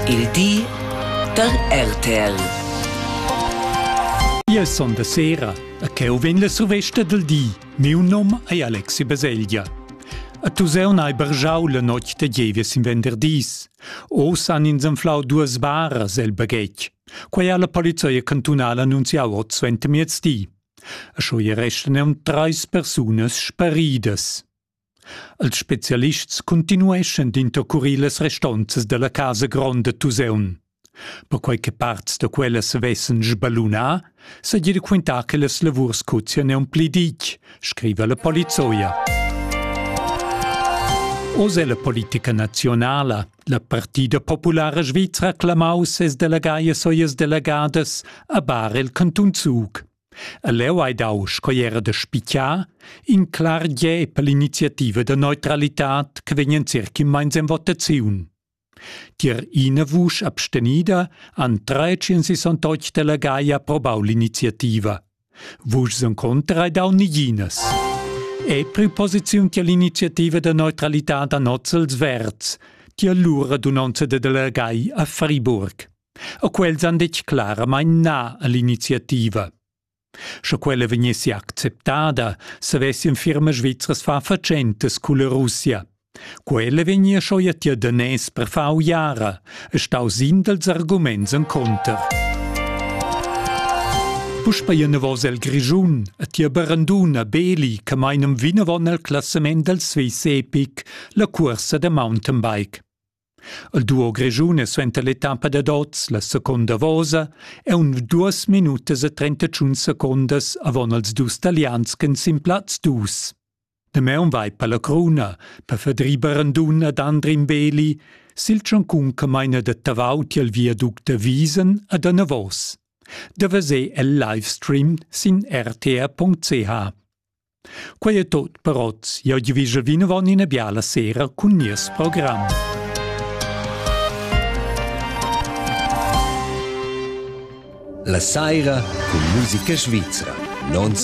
Il di da RTL. Ia son da sera, a cheu vegn la survesta del di. Miu nom ei Alexi Baselgia. A tu seun hai bargiau la notg de gievies in venderdis. Oz han ins anflau duas baras el baghetg. Quei ha la polizia cantunala annunziau ot suentermiezdi. A scho restano treis persunas sparidas. Els spezialists cuntinueschan d'intercurir las restonzas dalla casa gronda Tuseun. Perquei che parts da quellas vessen sballunà, seigi de quintar che las lavurs cozien aunc pli ditg, scriva la polizoia. Oz è la politica nazionala, la partida populara svizra clamau ses delegaias e las delegadas a bar el cantun Zug. E leu hai dau, sco era da spicar, in clar gie per l'iniziativa da neutralitad che vegnan circa immeins en votaziun. Tier ina vusch abstenida han 368 delegai approbau l'iniziativa. Vuschs en contra hai dau niginas. E preposiziun tier l'iniziativa da neutralitad a Nozzels Verds, tier l'ura dunonza de delegai a Friburg. E quels han detg claramain na a l'iniziativa. Sche quella vegnessi acceptada, savessien firmas svizras far fatschentas culla Russia. Quella vegnia schoi a tia danès per far uiara, e stau sin dels arguments en conter. Puspei enavos el Grischun, a tia baranduna Beli, che meinam vinavon al classament del Swiss Epic, la cuorsa da mountainbike. Il duo grischun è suenter l'etappa dad oz la seconda vosa e un duas minutas e trentacun secundas avon els dus talians ch'en sin plaz dus. Damaun vai per la cruna, per Fedri Barandun ed Andrin Beli, sil tschuncun che maina da Tavau tiel viaduct da Wiesen ad anavos. Da veser el live stream sin rtr.ch. Quei è tot per oz. Jau ti vige vinavon ina biala sera cun nies program. La saira cun musica svizra. Non